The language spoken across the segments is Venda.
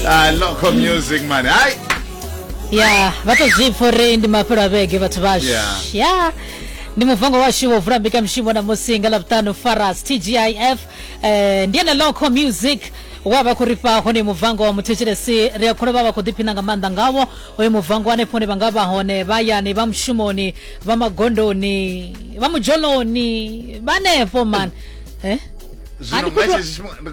ah local music man hayi ya vatozvipfa uri ndi mafhelo a vhege vhathu vashu Yeah. ya ndi muvango washu wo vula mbekamishumo na musi nga lavhuṱanu faras tgif eh, ndi ene local music wa vha khou ri fha hone muvango wa muthetshelesi ri a kholo vha vha khou ḓiphina nga maanḓa ngawo hoyo muvango hanefho hone vha nga vha hone vha yani vha mushumoni vha magondoni vha mudzholoni vhanefho man eh? zwino Ani khou manje tou- zwi-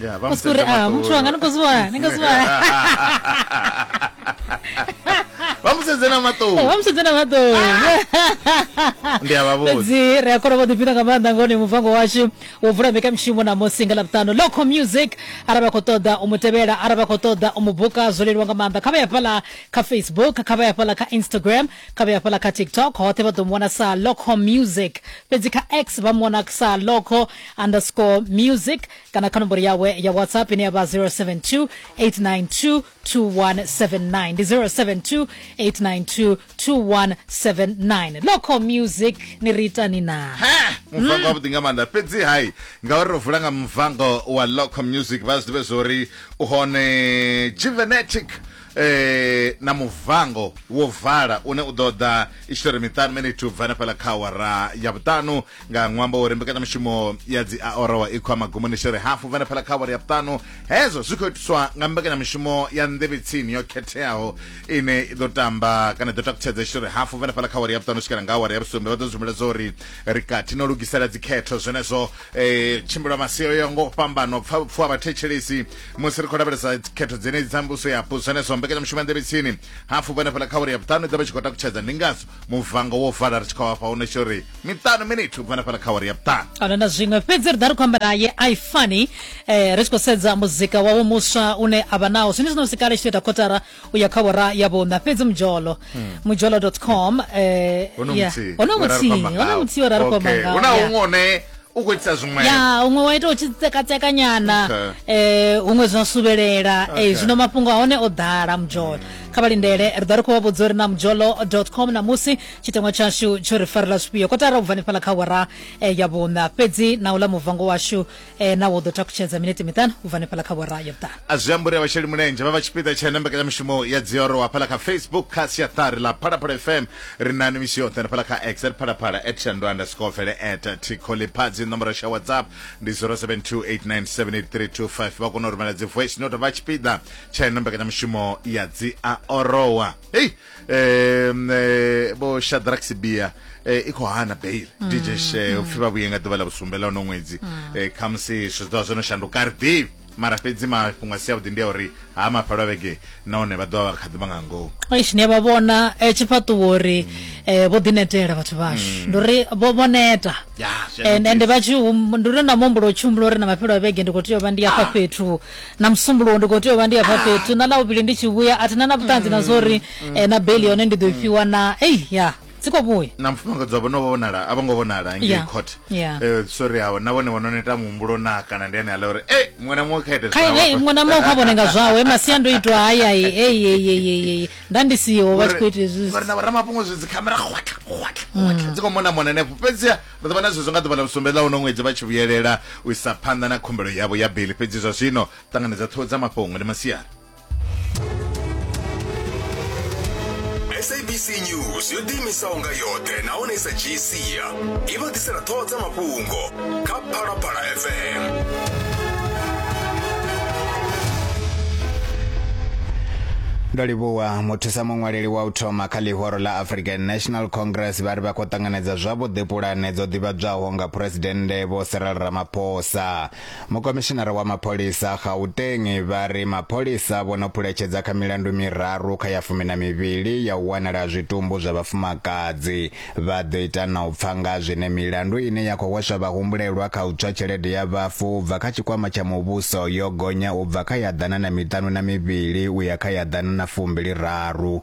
Yeah, vha Kusi uri musedzela ah, maṱoni. muthu wanga ni khou zwiwana ni khou zwiwana vha musedze na Eh, maṱoni vha musedze na maṱoni ndi a vha vhudza fhedzi ri a kona vho ḓifhina nga maanḓa ngoni muvango washu wo vula mbekanyamushumo na musinga ḽavhuṱano local music arali vha khou ṱoḓa u mu tevhela arali vha khou ṱoḓa u mu buka zwo leluwa nga maanḓa kha vha ya fhaḽa kha facebook kha vha ya fhaḽa kha instagram kha vha ya fhaḽa kha tiktok hoṱhe vha ḓo mu wana sa local music fhedzi kha x vha mu wana sa local underscore music kana kha nomboro yawe ya whatsapp ine ya vha 072 892 2179 ndi 072 892 2179 local music ni ri itani na ha muvango wavhuḓi nga maanḓa fhedzi hai ngauri ro vula nga muvango wa local music vha zwi ḓivhe zwori u hone juvenetic eh na muvango wo vala une u ḓo ḓa i tshi tori miṱanu minute u bva na fhala kha awara ya vhuṱanu nga ṅwambo wa uri mbekanyamushumo ya dzi aorowa i khou magumoni tshi ri hafu vhane phala kha awara ya vhuṱanu hezwo zwi khou itiswa nga mbekanyamushumo ya nḓevhetsini yo khetheaho ine i ḓo tamba kana ḓo takutshedza tshi ri hafu vhane phala kha awara ya vhuṱanu swikela nga awara ya vhusumbe vha ḓo zwimbiledza uri ri kati no lugisela dzikhetho zwenezwo um tshimbilo maseo ya ngo fhambana u pfa pfuwa vhathetshelesi musi ri khou lavhelesa khetho dzenedzi dza mbuso yapo zwenezwo mbekanyamushumo ya nḓevhetsini hafu vhane phala kha awara ya vhuṱanu i ḓo vha tshi khou takutshedza ndi ngazwo muvango wo vala ri tshi khou afha hune tsho ri miṱanu minithu ubva na fhala kha wari ya vhuṱanu ana na zwiṅwe fhedzi ri ḓa ri khou amba naye i funny eh, ri tshi khou sedza muzika wawe muswa une a vha nawo zwine zwino sikale tshi ita khotara u ya kha vhora ya vhuṋa fhedzi mujolo hmm. mujolo com eh, hono muthihi hono muthihi ora ri khou amba ngawo huna huṅwe u khou itisa zwiṅwe ya huṅwe wa ita u tshi tsekatseka nyana okay. eh huṅwe zwa subelela eh, okay. eh zwino mafhungo a hone o ḓala mujolo mm. kha vha lindele ri ḓo ri khou vha vhudza uri na mujolo.com na musi tshiteṅwa tshashu tsho ri farela zwifhio kotara u bva nifhala kha wara eh, ya vhuṋa fhedzi na u ḽa muvango washu eh, na wo ḓo takutshedza minete miṱanu u bva nifhala kha wara ya vhuṱanu a zwi amba uri vhasheli mulenzhe vha vha tshipiḓa tsha na mbekanyamushumo ya dzioro wa fhala kha facebook kha siaṱari ḽa phalaphala fm Ri na ni misi yoṱhe hanefhala kha x at phalaphala at shandu underscore vele at tikholiphazi nomboro sha whatsapp ndi 0728978325 vha kona u rumela dzi voice note vha tshipiḓa tsha ino mbekanyamushumo ya dzi a orowa hei um, eh, vho shadrax bia eh, i khou hana bail mm. dj she upfhi vha vhuye nga ḓuvha ḽa vhusumbe ḽa uno ṅwedzi mm. eh, khamusi zwithu zwa zwo no shanduka ri ḓivhi mara fhedzi mafhungo a si avhuḓi ndi a uri ha mafhelo a vhege nahone vha ḓovha vha kha ḓivha nga ngomu eish ni a vha vhona eh, tshifhaṱuwo uri eh, vho ḓinetela vhathu vhashu mm. ndi uri vho vho neta ende vha tshi ndi uri na muhumbulo u tshi humbula uri na mafhelo a vhege ndi khou tea u vha ndi afha ah. fhethu na musumbulowo ndi khou tea u vha ndi afha ah. fhethu na ḽa vhuvhili ndi tshi vhuya a thina na vhuṱanzi na mm. zwa uri mm. eh, na beli yone ndi ḓo i fhiwa na ei ya dzi khou vhuya na mufumakadzi wavho no vhonala a vho ngo vhonala ngei court eh, sorry awo na vhone vhono neta muhumbulo na kana ndi ane ala uri e muṅwe na muṅwe khaite khae muṅwe na muṅwe kha vhone nga zwawe masiandoitwa hayayi eyeyeyeyeyi nda ndi siho vha tshi khou ita izwi na vhoramafhungo zwi dzikhamera khwatlha khwatlha khwatlha mm. dzi khou mona mona henefho fhedziha ri ḓo vha na zwezwo nga ḓuvha ḽa vhusumbe ḽa uno ṅwedzi vha tshi vhuyelela u isa phanḓa na khumbelo yavho ya beli fhedzi zwa zwino ṱanganedza ṱhoho dza mafhungo ndi masiari sabc news yo ḓiimisaho nga yoṱhe nahone i sa dzhii sia i vha ḓisela ṱhoho dza mafhungo kha phalaphala fm ndo livhuwa muthusa muṅwaleli wa u thoma kha ḽihoro ḽa african national congress vha ri vha khou ṱanganedza zwavhuḓi pulane dzo ḓivhadzwaho nga phuresidennde vho cyril ramaphosa Mukomishinara wa mapholisa a Gauteng vha ri mapholisa vho no phuletshedza kha milandu miraru kha ya fumi na mivhili ya u wanala ha zwitumbu zwa vhafumakadzi. Vha ḓo ita na u pfa nga zwine milandu ine ya khou hweswa vhahumbulelwa kha u tswa tshelede ya vhafu u bva kha tshikwama tsha muvhuso yo gonya u bva kha ya ḓana na miṱanu na mivhili u ya kha ya ḓana na fumbili raru